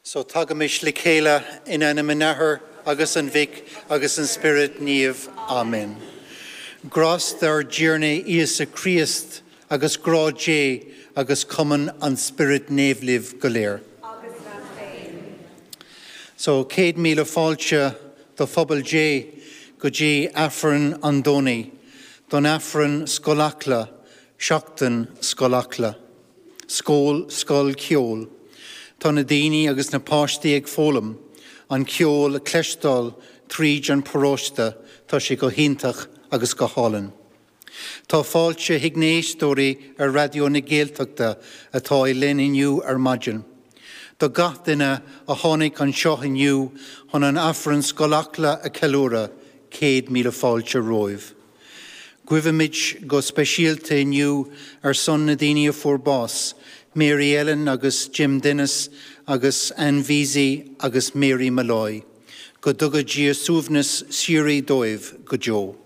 So tagaimis le chéile in ainm an Athar agus an Mhic agus an Spioraid Naoimh. Amen. Grásta ár dTiarna Íosa Críost agus grá Dé agus cumann an Spioraid Naoimh libh go léir. Agus leat féin. So céad míle fáilte do Phobal Dé go dtí Aifreann an Domhnaigh, don Aifreann Scoil Acla, Seachtain Scoil Acla. Scoil, Scoil Cheoil. Tá na daoine agus na páistí ag foghlaim an ceol a cloisteáil tríd an paróiste, tá sé go hiontach agus go hálainn. Tá fáilte chuig na héisteoirí ar Raidió na Gaeltachta atá linn inniu ar maidin, do gach duine a tháinig anseo inniu chun an Aifreann Scoil Acla a ceiliúradh, céad míle fáilte romhaibh. Guímid go speisialta inniu ar son na daoine a fuair bás, Mary Ellen agus Jim Dennis agus Anne Vesey agus Mary Molloy, go dtuga Dia suaimhneas síoraí dóibh go deo.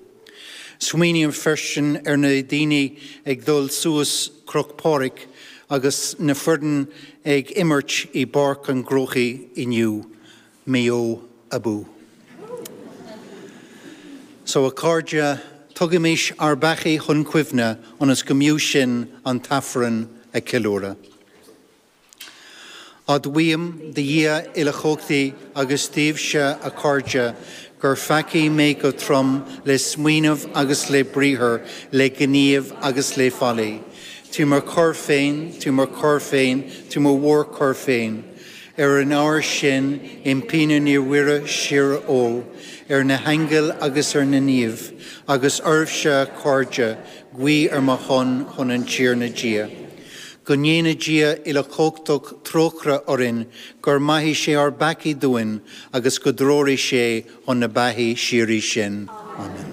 Smaoiním freisin ar na daoine ag dul suas Cruach Phádraig agus na foirne ag imirt i bPáirc an Chrócaigh inniu. Maigh Eo abú. So a cairde, tugaimis ár bpeacaí chun cuimhne ionas go mb'fhiú sinn an tAifreann a ceiliúradh. Admhaím do Dhia uilechumhachtaí agus daoibhse a cairde gur pheacaí mé go trom le smaoineamh agus le briathar, le gníomh agus le faillí. Trí mo choir féin, trí mo choir féin, trí mo mhórchoir féin. Ar an ábhar sin, impím ar Naomh-Mhuire síorógh, ar na haingil agus ar na naoimh, agus oraibhse, a chairde, guí ar mo shon chun an Tiarna Dia. Go ndéana Dia uilechumhachtach trócaire orainn, go maithe sé ár bpeacaí dúinn, agus go dtreoraí sé chun na beatha síoraí sinn. Amen.